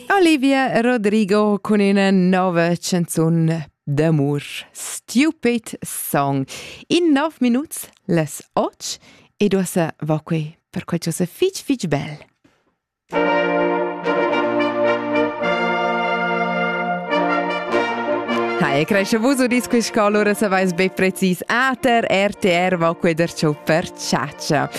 Olivia Rodrigo cun ina nova canzun d'amur, Stupid Song. In nov minuts les och e duossa va quei per quei che fitg fitg bel. Hi, cresce vuso disquis che allora se vais be precis ater RTR va quei der ciò per ciaccia.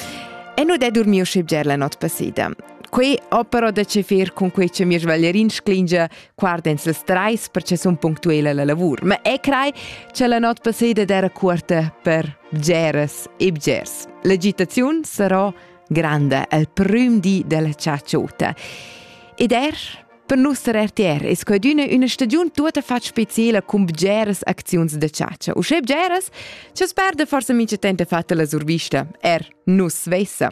E nu de dormiu schib ger la not passida. Quei opera da cefir cun quei che mir Valerin sclingia guardens las treis per che sun punctuela la lavur. Ma e crei che la not passeda era cuorta per bgeres e bgers. L'agitaziun sarà grande al prim di della ciaciota. Ed er per nus der RTR es quadüna üna stagiun tuota fat speciela cun bgeres acziuns da ciacia. U sche bgeres, ce sperde forse mincha tempo fatta la survista, er nus svessa.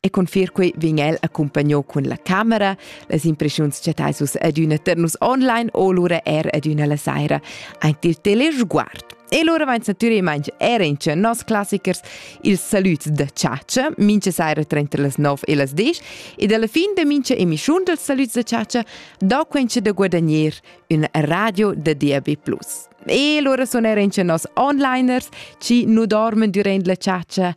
E confir quei vegn el accompagno cun la camera. Las impressiuns chattais vus adüna tar nus online o lura er adüna la saira aint il telesguard. E lura vains natüralmaing era in nos classichers ils salüds da Ciacia, mincha saira tranter las 9 e las 10, ed alla fin de mincha emischiun dels salüds da Ciacia dà quencha da guadagner una radio da DAB+. E lura sun era in nos onliners, ci nu dormen durant la Ciacia,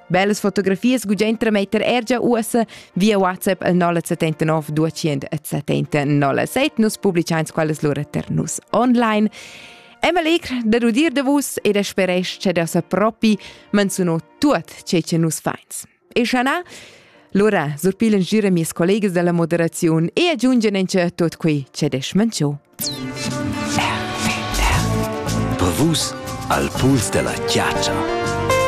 Bellas fotografias gudain trametter er gia uossa via WhatsApp al 079 270 07. Nus publichains quellas lura per nus online. Emma Legr, da rudir da vus e da speresch che da sa propi menzuno tuot ce che nus fains. E schanà, lura surpilen gira mies collegas dalla moderaziun e aggiungen en che tot quei che desch mencio. Per vus al puls della chiaccia.